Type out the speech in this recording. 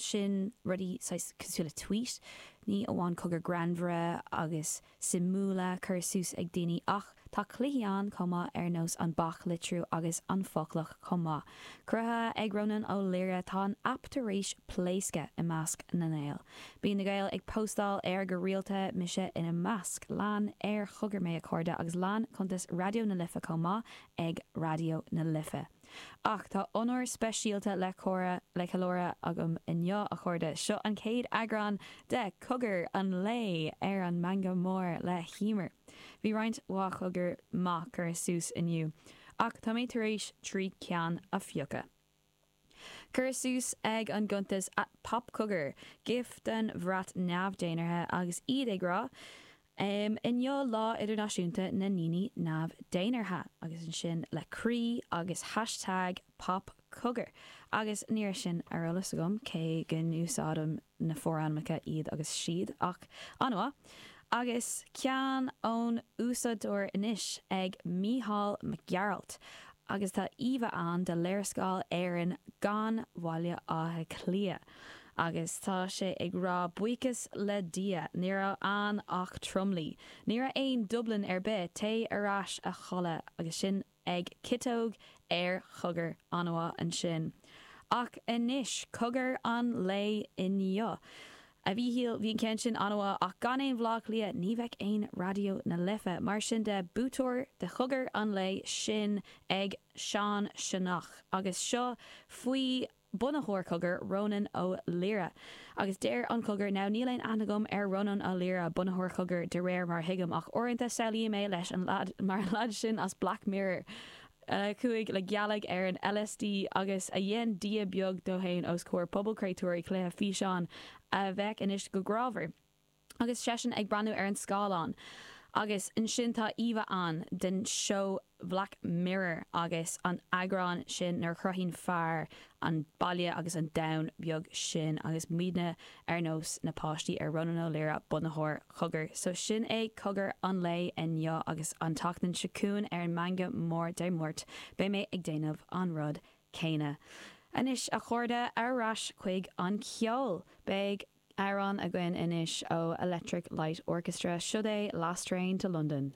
sin rudaí saghas cosúil le tweet, ní amháin cogair ghreannmhara agus suimiúla curtha suas ag daoine ach tá cluichí ann chomh maith ar nós an bac litriú agus an foclach chomh maith. Cruthaithe ag Rónán Ó Laoire, tá an aip tar éis pléascadh i measc na nGael. Bíonn na Gaeil ag póstáil air go rialta, mise ina measc. Lean ar chogar mé a chairde agus lean cuntas Raidió na Life chomh maith ag Raidió na Life. Ach tá onóir speisialta le ceiliúradh agam inniu, a chairde. Seo an chéad eagrán de Cogar an Lae ar an Meangadh Mór le hEimear. Bhí roinnt mhaith cogair maith curtha suas inniu, ach tá mé tar éis trí ceann a phiocadh. Cuireadh suas ag an gcuntas 'Pop Cogar', gif den bhrat neamhdhénartha, agus iad ag rá, Inniu Lá Idirnáisiúnta na nDaoine Neamh-Dénártha, agus ansin le croí agus hashtag PopCogar, agus ní raibh sin ar eolas agam, cé go n-úsáidim na forainmneacha iad agus siad, ach an-mhaith. Agus ceann ón úsáideoir anois, ag Mícheál Mac Gearailt, agus tá íomha ann de léarscáil Éireann gan Bhaile Átha Cliath. Agus tá sé ag rá buíochas le Dia, ní raibh ann ach tromluí. Ní raibh aon Dublin ar bith, téigh ar ais a chodladh agus sin ag Ciotóg ar Chogar an-mhaith ansin. Ach anois, cogar an lae inniu. A Mhíchíl, bhí an ceann sin an-mhaith, ach gan aon Bhleá Cliath, ní bheadh aon Raidió na Life. Mar sin de, buaiteoir de chogar an lae, sin ag Sean Sionnach. Agus seo faoi. bunaitheoir Cogar, Rónán Ó Laoire. Agus deir an Cogar, Now níl aon aithne agam ar Rónán Ó Laoire, bunaitheoir Cogar, de réir mar a thuigim, ach uaireanta samhlaím é leis, mar an lead sin as Black Mirror, a chuaigh le gealaigh ar an LSD agus a dhein dia beag de fhéin os comhair pobal créatúirí cluiche físeáin a bheadh ansin go grámhar. Agus seisean ag breathnú ar an scáileán. Agus ansin tá íomha ann den seó Bhlack Mirror agus an eagrán sin nuair a chruthaíonn fear an baile agus an domhan beag sin agus muidne ar nós na páistí ar Rónán Ó Laoire bunaitheoir Cogar. So sin é Cogar an lae inniu agus an tseachtain seo chugainn ar an Meangadh Mór Dé Máirt beidh mé ag déanamh an rud céanna. Anois a chairde, ar ais chuig an ceol. Beidh. Amhrán againn anois ó Electric Light Orchestra, siod é Last Train to London.